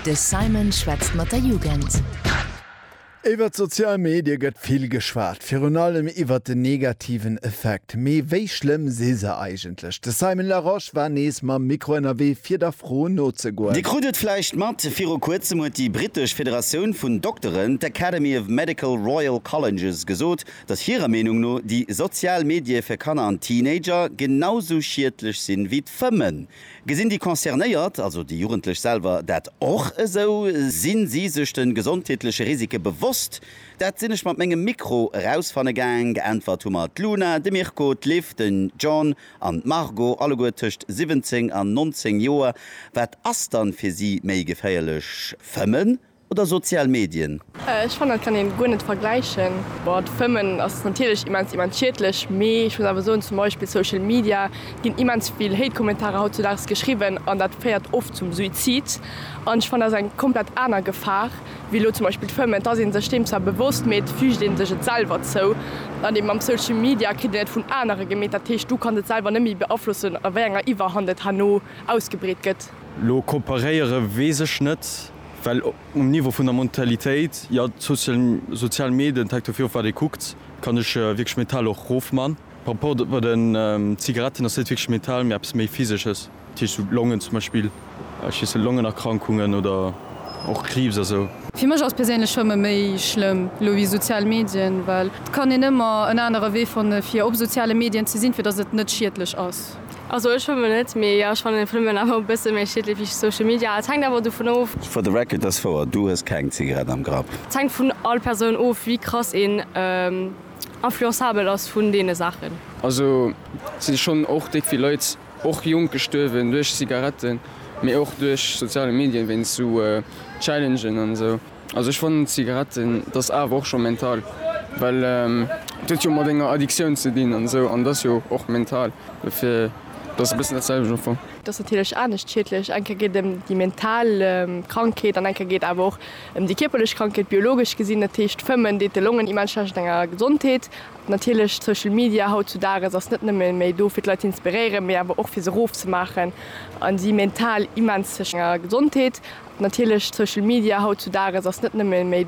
De Simon schwätzt mat der Jugend. Iwwer d'sozial Medie gëtt vill geschwat, virun allem iwwer den negativen Effekt. Mee wéi schlëmm si se eigentlech? De Simon Larosche war nees mam Mikro ënnerwee fir der Fro nozegoen. Dir krut et vläicht mat, viru kuerzem huet déi brittesch Federatioun vun Dokteren, d'Academy of Medical Royal Colleges, gesot, datt hirer Meenung no déi sozial Medie fir Kanner an Teenager genau sou schiedlech sinn, wéi d'Fëmmen. Gesinn déi Concernéiert, also déi Jugendlech selwer, dat och esou? Sinn si sech de gesondheetleche Risike bewosst? Dat sinn ech mat mengem Mikro erausfanne gaang. Geäntwert hu mer d'Luna, de Mirko, d'Liv, den John an d'Margot, alleguer tëscht 17 an 19 Joer. Wat ass dann fir si méi geféierlech? Fëmmen Oder sozial Medien? Ech fannen dat kann een guer net vergläichen. Boah d'Fëmmen ass natierlech immens immens schiedlech, mee ech muss awer soen zum Beispill Social Media ginn immens vill Hate Kommentarer hautzedaags geschriwwen an dat féiert oft zum Suizid an ech fannen dat ass eng komplett aner Gefahr wéi elo zum Beispill d'Fëmmen. D'ass een sech deem zwar bewosst mee et fügt een sech et selwer zou an eben mam Social Media kritt een et vun anere gemeet, dat heescht du kanns et selwer net méi beaflossen a wéi enger Iwwerhand et herno ausgebreet gëtt. Lo kooperéiere weess ech net. Well um Niveau vun der Mentalitéit, jo, d'sozial Medien, hänkt dovir of wat ee kuckt, kann ech wierklech mental och rofman. Par rapport bei den Zigaretten ass net wierklech mental, mee eppes méi physesches, dat heescht sou Longen zum Beispill, ech weess net, Longenerkrankungen oder och Kriibs a sou. Fir mech ass perséinlech Fëmme méi schlëmm elo wéi sozial Medien, well et kann een ëmmer en anere Wee fanne fir op soziale Medien ze sinn, fir datt et net schiedlech ass. Also ech schwëmmen net, mee jo, ech fannen den Fënomen awer e bësse méi schiedlech wéi Social Media. Et hänkt awer dovun of. For the record, dass wouer, du hues keng Zigarett am Grapp. Et hänkt vun all Persoun of wéi krass een influenzabel ass vun deene Saachen. Also et si schonn och déck vill Leit, och jonk, gestuerwen duerch Zigaretten, mee och duerch soziale Medien, wéinst sou Challengen an esou. Also ech fannen Zigaretten dass awer och scho mental, well et huet jo mat enger Addiktioun ze dinn an esou an et ass jo och mental, dofir et ass e bëssen dat selwecht am Fong. Et ass natierlech anescht schiedlech, eng Kéier geet et ëm déi mental Krankheet an eng Kéier geet et awer och ëm déi kierperlech Krankheet, biologesch gesinn. Dat heescht, Fëmmen deet de Longen immens schlecht an enger Gesondheet. Natierlech, Social Media haut zu Dages ass net nëmme méi do fir d'Leit ze inspiréieren, mee awer och fir se roof ze maachen a si mental immens ze. Gesondheet. Natierlech, Social Media haut zu Dages ass net nëmme méi.